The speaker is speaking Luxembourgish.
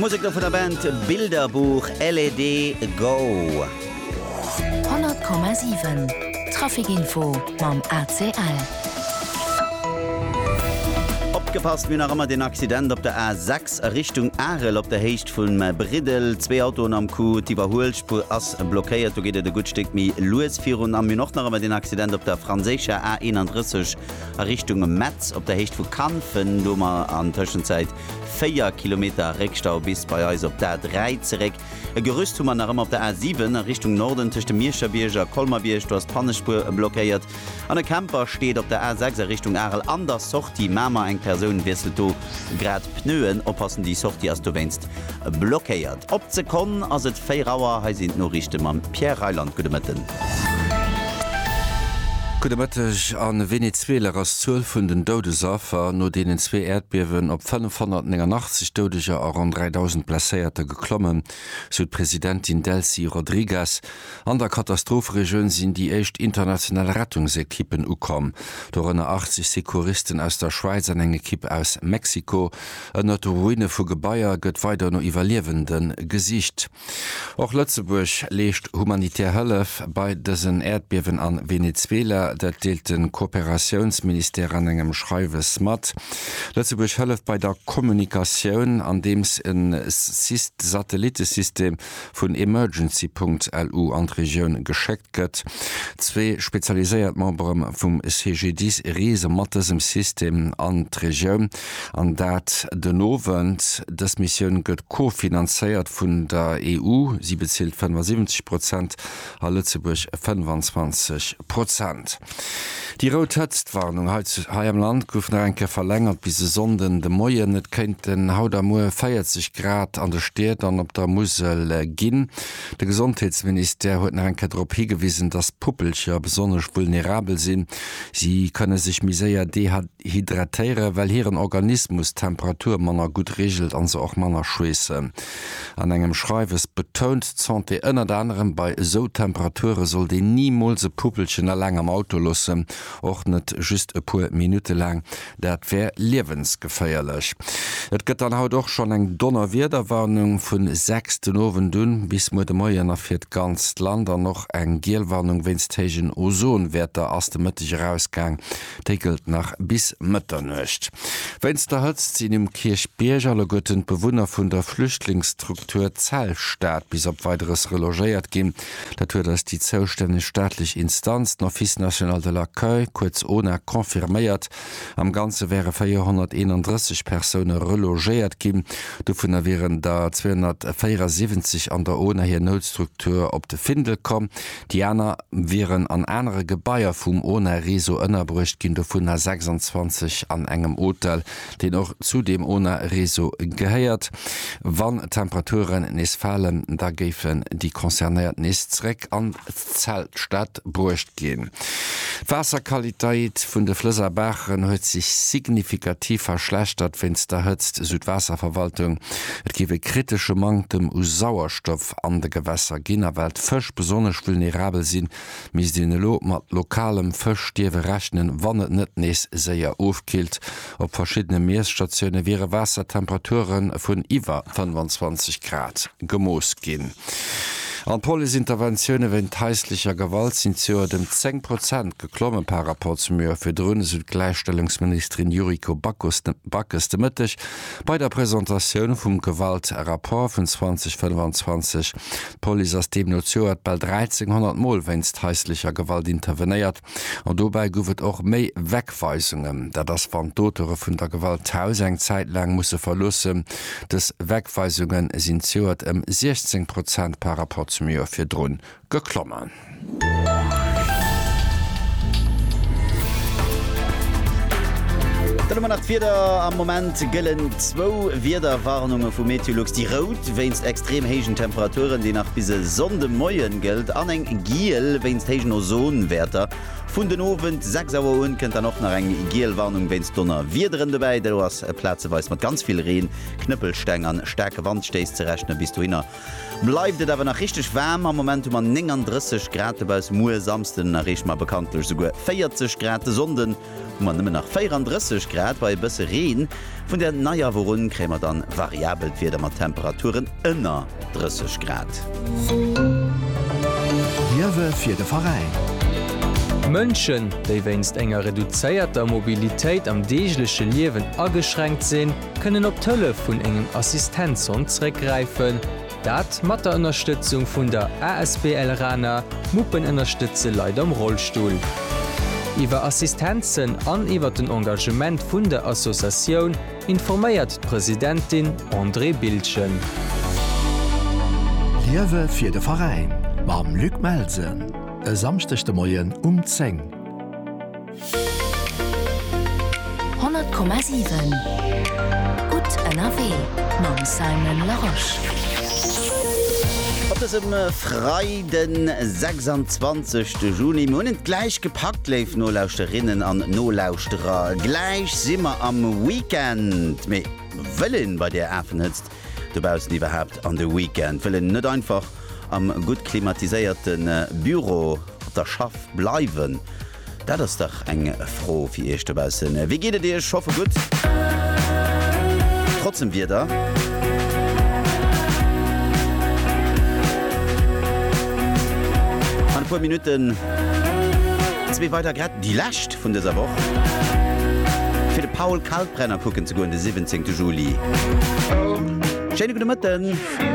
Musek do vun der Band Bilderbuch, LED Go. 100,7 Trafikinfo mam ACL. Opgepasst, Mir hunn nach ëmmer deen Accident op der A 6 a Richtung Arel op der Héicht vum Briddel. Zwee Autoen am Coup, d'Iwwerhuelspuer ass blockéiert. Do geet et e gutt Stéck méi lues virun. A mir hunn och nach ëmmer deen Accident op der franséischer A 31, A Richtung Metz op der Héicht vu Kanfen, do hu mer an Tëschenzäit 4 Kilometer Réckstau bis bei eis op d'A3 zeréck. E Gerüst hu mer nach ëmmer op der A7 a Richtung Norden tëscht dem Miescherbierg a Colmer-Bierg, do ass d'Pannespuer blockéiert. An e Camper steet op der A6 a Richtung Arel an der Sortie Mamer, eng Persoun wiesselt do. Grad d'Pneuen oppassen, déi Sortie ass dowéinst blockéiert. Op d'Sekonn ass et 4 Auer, hei sinn d'Noriichte mam Pierre Reyland. Gudde Mëtten. Gudde Mëtteg. A Venezuela ass d'Zuel vun den Doudesaffer no deenen zwee Äerdbiewen op 589 Doudeger a ronn 3.000 Blesséierter geklommen, sou d'Presidentin Delcy Rodriguez. An der Katastropheregioun sinn déi éischt international Rettungsekippen ukomm, dorënner 80 Secouristen aus der Schwäiz an eng Ekipp aus Mexiko. Ënnert de Ruine vu Gebaier gëtt weider no Iwwerliewende gesicht. Och Lëtzebuerg leescht humanitär Hëllef bei dësen Äerdbiewen a Venezuela. Dat deelt de Kooperatiounsministère an engem Schreiwes mat. Lëtzebuerg hëlleft bei der Kommunikatioun, andeems e Satellitesystem vun Emergency.lu an d'Regioun geschéckt gëtt. Zwee spezialiséiert Membere vum CGDIS reese mat dësem System an d'Regioun, an dat den Owend. Dës Missioun gëtt co-finanzéiert vun der EU, si bezilt 75 Prozent. a Lëtzebuerg 25 Prozent. Déi rout Hëtztwarnung hei am Land gouf nach eng Kéier verlängert bis e Sonnden de Moien. Et kéinten haut a muer 40 Grad an de Stied an op der Musel ginn. De Gesondheetsministère huet nach eng Kéier drop higewisen, datt Puppelcher besonnesch vulnerabel sinn. Si kënne sech méi séier dehydratéieren, well hiren Organismus d'Temperatur manner gutt reegelt a se och manner schweessen. An engem Schreiwes betount d'Santé ënnert anerem, bei esou Temperature sollt een nimools e Puppelchen eleng am Auto loossen, och net just e puer Minutte laang, dat wär liewensgeféierlech. Et gëtt dann haut och schonn eng Donnerwiederwarnung vu 6 den Owend un bis muer de Moien a fir d'ganzt Land an och eng giel Warnung wéinst héijen Ozonwäerter ass de Mëtteg erausgaang. Déi gëllt nach bis Mëtternuecht. Wéinst der Hëtzt sinn um Kierchbierg alleguerten d'Bewunner vun der Flüchtlingsstruktur Zellstad bis op Weideres relogéiert ginn. Dat huet eis déi zoustänneg staatlech Instanz, d'Office national de l'accueil, kuerz ona, confirméiert. Am Ganze wäre 431 Persoune relogéiert ginn. Dovunner wieren der 274 an der ona hir Noutstruktur op de Findel komm. Déi aner wieren an anere Gebaier vum ONA-Réseau ënnerbruecht ginn, dovunner 26 an engem Hotel, deen och zu deem ONA-Réseau gehéiert. Wann d'Temperaturen nees falen, da géifen déi Concernéiert nees zeréck an d'Zeltstad bruecht ginn. D'Waasserqualitéit vun de Flëss a Baachen huet sech signifikativ verschlechtert wéinst der Hëtzt, sou d'Waasserverwaltung. Et géif e kritesche Manktem u Sauerstoff Kräftstoff an de Gewässer ginn, a well d'Fësch besonnesch vulnerabel sinn, misst een elo mat lokalem Fëschstierwe rechnen, wann et net nees séier ofkillt. Op verschiddene Miesstatioune wiere Waassertemperature vun iwwer 25 Grad gemooss ginn. An d'Police-Interventioune wéint haislecher Gewalt sinn zejoert ëm 10 Prozent geklomme par Rapport zum Joer virdrun, esou d'Gläichstellungsministerin Yuriko Backes de Mëtteg. Bei der Presentatioun vum Gewaltrapport vun 2025, d'Police ass deemno d'Joert bal 1.300 Mol wéinst haislecher Gewalt intervenéiert an dobäi guff et och méi Wegweisungen. Dat ass wann d'Auteure vun der Gewalt d'Haus eng Zäit laang musse verloossen. Dës Wegweisunge sinn d'Joert ëm 16 Prozent par Rapport zum Joer virdrun geklommen. Dann hu mer nach d'Wieder, Am Moment gëllen zwou Wiederwarnunge vu Meteolux, déi rout wéinst extrem héijen Temperaturen, déi nach bis e Sonndemoien gëllt, an eng giel wéinst héijen Ozonwäerter. Vun den Owend 6 Auer un kënnt dann och nach eng giel Warnung wéinst Donnerwiederen dobäi. Do ass plazeweis mat ganz vill Reen, Knëppelsteng an staarke Wandstéiss ze rechnen. Bis dohinner Bleift et awer nach richteg waarm, am Moment hu mer 39 Grad dobauss, muer Samsden erreeche mer bekanntlech esouguer 40 Grad, de Sonnde hu mer nëmmen nach 34 Grad bei e bësse Reen. Vun der Neiawoch un kréie mer dann variabelt Wieder mat Temperaturen ënner 30 Grad. Liewe fir de Veräin. Mënschen, déi wéinst enger reduzéierter Mobilitéit am deegleche Liewen ageschränkt sinn, kënnen op d'Hëllef vun engem Assistenzhond zeréckgräifen, dat mat der Ënnerstëtzung vun der asbl Raner Muppen ënnerstëtze Leit am Rollstull. Iwwer Assistenzen an iwwer den Engagement vun der Associatioun informéiert d'Presidentin Andrée Bildgen. Liewe fir de Veräin mam Luc Melsen e Samschdeg de Moien um 10. 100,7 Gutt ënnerwee mam Simon Larosche. Op dësem Freiden, 26 de Juni, mir hunn et gläich gepackt, léif Nolauschterinnen an Nolauschterer, gläich si mer am Weekend. Mee wëll een bei där Afenhëtzt dobaussen iwwerhaapt an de Weekend? Wëll een net einfach am gutt klimatiséierte Büro op der Schaff bleiwen? Dat ass dach eng Fro fir iech dobaussen. Wéi geet et iech? Hoffe gutt, trotz dem Wieder. An e puer Minutten zwee weider Grätt, déi lescht vun dëser Woch, fir de Paul Kalkbrenner kucken ze goen de 17 Juli. Schéine gudde Mëtten.